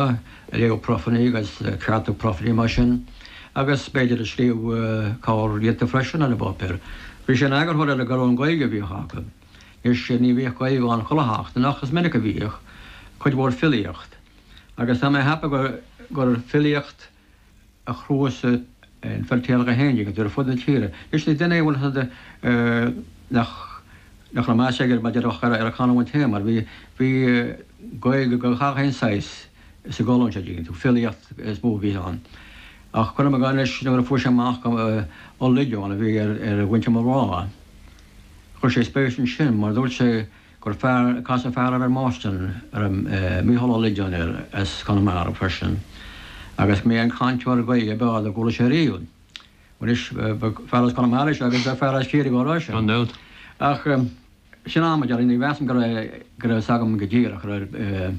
Léamh profaí agus ceartú profaí mar sin agus b'fhéidir ag scríobh corrghiota freisin ar an bpáipéar. Bhí sé ina eagarthóir ar an gcolún Gaeilge a bhíodh acu. Anois ní bhíodh Gaeilge ann chuile sheachtain ach is minic a bhíodh, cuid mhór filíocht. Agus tá mé a cheapadh gur filíocht. a chnuasaigh an Feirtéarach 11 agus ar fud na tíre. Leis na déanaí bhuel is nach nach raibh meas aige mar déarfá ar a chanúint féin mar bhí bhí Gaeilge de gach aon saghas sa gcolún seo dtuigeann tú filíocht is mó a bhí ann ach cuirim i gcás anois nuair a fuair sé amach gur Ó Loideáin a bhí ar ar mhuintir mo mháthar chuir sé spéis ansin mar dúirt sé gur casadh fear air i mBoston, Micheál Ó Loideáin air as Conamara freisin agus b'é an cainteoir Gaeilge ab fhearr dá gcuala sé riamh. Anois, fear as Conamara is ea agus bheadh fear as Ciarraí dhá rá sin. Ach, sin mar déarfá, ní mheasaim go raibh fhios agam go díreach.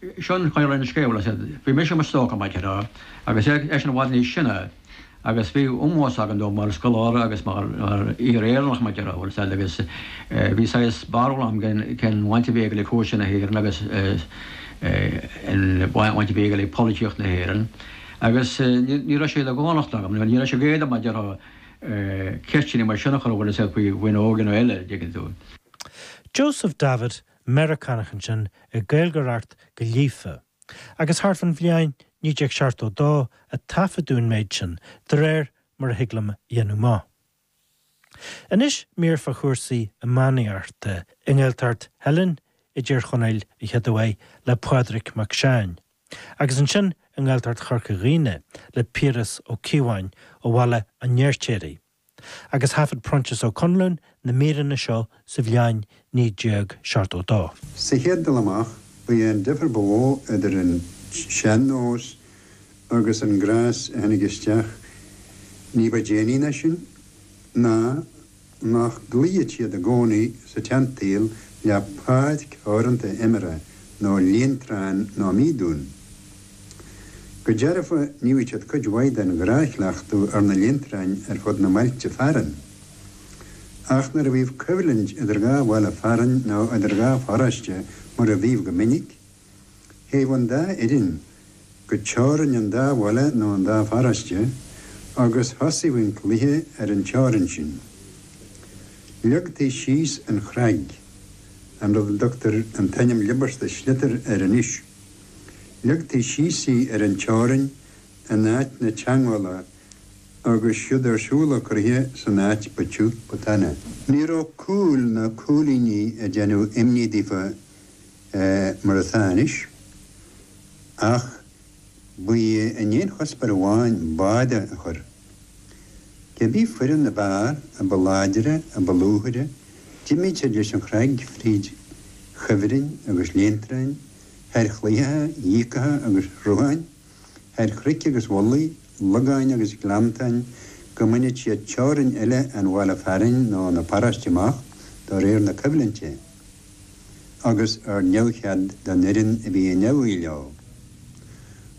Sé an chaoi a raibh an scéal, is é bhí mise i mo stócach, mar déarfá, agus eisean i bhfad níos sine, agus bhí ómós agam dó mar scoláire agus mar fhíor-Éireannach, mar déarfá, agus bhí saghas barúil agam cén bhaint a bhí aige le cúrsaí na hÉireann agus an bhaint a bhí aige le polaitíocht na hÉireann, agus ní raibh sé de dhánacht agam, nó ní raibh sé d'éadan orm, mar déarfá, ceisteanna mar sin a chur air faoina óige nó eile, a dtuigeann tú. Joseph Davitt Meiriceánach ansin ag Gaeilgeoireacht go líofa, agus thart fán bhliain 1972 a taifeadadh an méid sin, de réir mar a thig liom a dhéanamh amach. Anois mír fá chúrsaí iománaíochta, i nGaeltacht Theilinn i dTír Chonaill a chéaduair, le Pádraig Mac Seáin, agus ansin i nGaeltacht Chorca Dhuibhne le Piaras Ó Cíobháin ó Bhaile an Fheirtéaraigh. agus thaifead Proinsias Ó Conluain na míreanna seo sa bhliain 1972. Sa chéad dul amach, ba é an difear ba mhó idir an sean-nós agus an gnás a tháinig isteach ní ba déanaí ná sin ná nach gcloífeadh siad i gcónaí sa tseansaol le páirc theoranta imeartha nó léantrán ná míodún. Go dearfa, níodh siad cuid mhaith den ghnáthchleachtadh ar na léantráin ar fud na mbailte fearainn. Ach nuair a bhíodh coimhlint idir dhá bhaile fearainn nó idir dhá pharóiste, mar a bhíodh go minic, théadh an dá fhoireann go teorainn an dá bhaile nó an dá pharóiste agus thosaíodh an cluiche ar an teorainn sin. Leagtaí síos an chnag, an rud a dtugtar an t-ainm liobarta sliotar air anois. Ligtí síos í ar an teorainn in áit na teangmhála agus siúd ar siúl an cluiche san áit ba tiugh ba taine. Ní raibh cúil ná cúilíní ag déanamh imní daofa mar atá anois, ach ba í an aon chuspóir amháin báire a chur. Cé bith foireann ab fhearr a ba láidre, a ba luaithe, d'imeodh siad leis an chnag fríd chuibhrinn agus léintrein thar chlaítheacha, dhíogacha agus shrutháin, thar chnoic agus mhullaigh, logáin agus gleanntáin, go mbainfeadh siad teorainn eile an bhaile fearainn nó na paróiste amach do réir na coimhlinte, agus ar neamhchead don fhoireann a bhí i ndeabhaidh leo.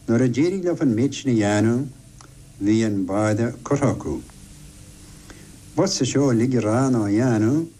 Nuair a d'éirigh leo an méid sin a dhéanamh, bhí an báire curtha acu. B'fhusa seo uilig a rá ná a dhéanamh.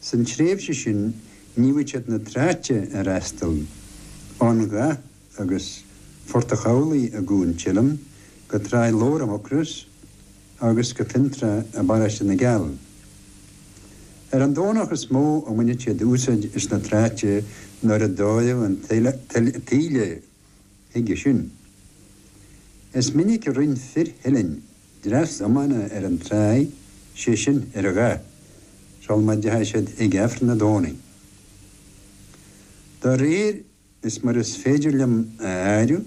San tréimhse sin níodh siad na tráite a fhreastal, ón Ghaoth agus Phort a' Chabhlaigh i gCuan Teilinn go Tráigh Lobhair i Mucrois agus go Fionntrá i bparóiste na gCeall. Ar an Domhnach is mó a bhainfeadh siad úsáid as na tráite nuair a d'fhóirfeadh an taoille chuige sin. Is minic a rinn fir Theilinn dreas iomána ar an tráigh, sé sin ar an Ghaoth, sul má dteigheadh siad ag Aifreann a' Domhnaigh. Do réir is mar is féidir liom a áireamh,